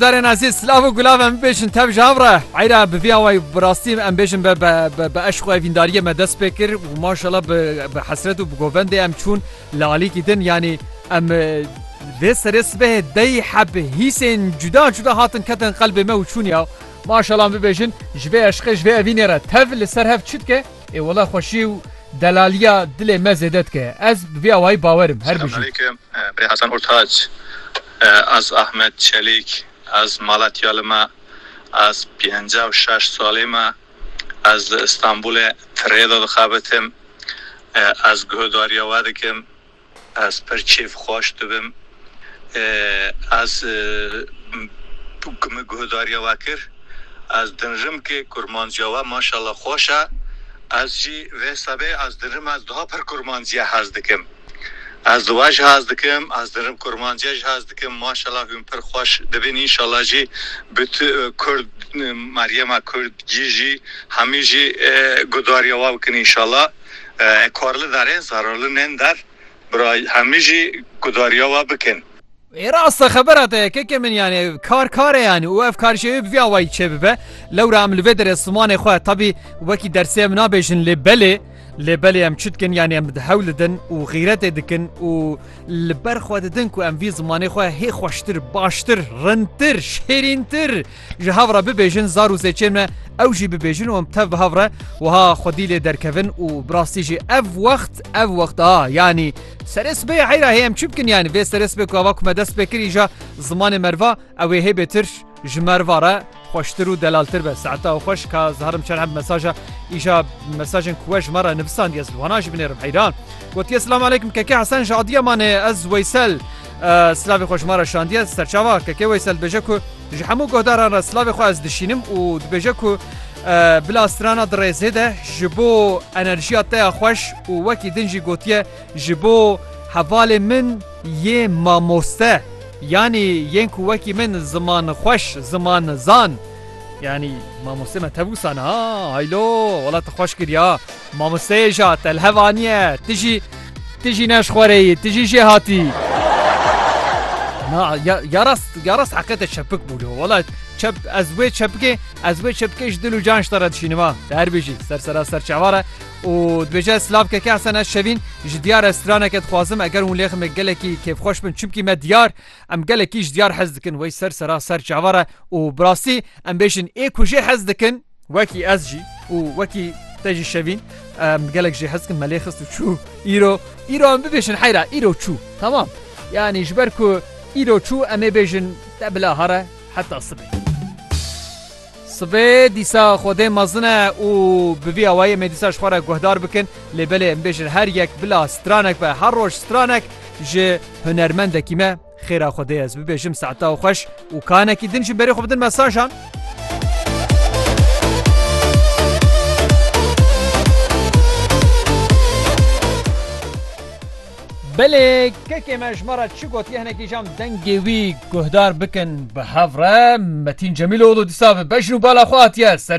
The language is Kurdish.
Darên ezîz silav û gulav em bibêjin tev ji hev re. Eyra bi vî awayî bi rastî em bêjin be be be eşq û evîndariyê me dest pê kir û maşallah bi bi hesret û bi govendê em çûn li alîkî din yanî em lê serê sibehê dey heb hîsên cuda cuda hatin ketin qelbê me û çûn ya. Maşallah em bibêjin ji vê eşqê ji vê evînê re tev li ser hev çi dike? Ê wele xweşî û delaliya dilê me zêde dike. Ez bi vî awayî bawer im. Her bijî. Selâmû Eleykum Birê Hasan Ortac Ez Ahmet Çelîk, ez Malatyali me, ez pêncî û şeş salî me, ez li Îstanbûlê tirê de dixebitim, ez guhdarîya we dikim, ez pir kêf xweş dibim, ez ku min guhdarîya we kir, ez dinirim ke kurmancîya we maşallah xweş e, ez jî vê sebê ez dinirim ez daha pir kurmancîye hez dikim. Ez di we jî hez dikim, ez di rib kurmanciye jî hez dikim, maşela hûn pir xweş dibin înşela jî bi tu kurd Meryema kurd gî jî hemî jî gudarîya we bikin înşela ekarli derê zararli nên der bira hemî jî gudarîya we bikin. Ê rast e xebera te yekeke min yani ev kar kare yani û ev karişê wê bi vî awayî çêbibe. Lewra em li vê derê zimanê xwe tebî wekî dersê em nabêjin lê belê lê belê em çi dikin yani em hewl didin û xîretê dikin û li ber xwe didin ku em vî zimanê xwe hê xweştir, baştir, rintir, şêrîntir ji hev re bibêjin zar û zêçên me ew jî bibêjin û em tev bi hev re wiha xwedî lê derkevin û bi rastî jî ev wext ev wext a yanî Serê sibê heyra hê em çi bikin yani vê serê sibê ku ava ku me dest pê kir îja zimanê merva ew ê hê bêtir ji merva re xweştir û delaltir be. Saeta ew xweş ka ziharim çend heb mesaja îja mesajên ku we ji me re nivisandiye ez li wana jî binêrim heyran. Gotiye Silam aleykum keke Hesen ji Adiyamanê ez Weysel silavê xwe ji me re şandiye serçava keke Weysel dibêje ku Ji hemû guhdaran re silavê xwe ez dişînim û dibêje ku bila strana dirêzê de ji bo enerjiya te ya xweş û wekî din jî gotiye ji bo hevalê min yê mamoste yanî yên ku wekî min ziman xweş ziman zan yanî mamoste me tevûsan ha haylo wala te xweş kiriya Mamosteyê ja telhev aniye. Ti jî ti jî ne ji xwe re yî, ti jî jê hatî. Na ya ya rast ya rast heqete çepik bû lo. Wala çep ez wê çepikê ez wê çepikê ji dil û can ji te re dişînim ha. Te her bêjî ser sera ser çavar e û dibêje silav keke Hesen ez şevîn ji diyar restoraneke dixwazim eger hûn lê ximek gelekî kêfxweş bin çimkî me diyar em gelekî ji diyar hez dikin wey ser sera ser çavar e û bi rastî em bêjin ê ku jê hez dikin Wekî ez jî û wekî te jî şevîn em gelek jê hezkin me lê xist û çû îro îro em bibêjin heyra îro çû temam yanî ji ber ku îro çû em ê bêjin te bila here heta sibê. Sibê dîsa xwedê mezin e û bi vî awayê em ê dîsa ji xwe re guhdar bikin lê belê em bêjin her yek bila stranek be her roj stranek ji hunermendekî me Xêra xwe dê ez bibêjim saeta xweş û kanekî din ji berê xwe bidin mesajan. Belê kekê me ji me re çi gotiye hinekî jam dengê wî guhdar bikin bi hev re Metîn Cemîloğlu dîsa bi bejn û bala xwe hatiye serçe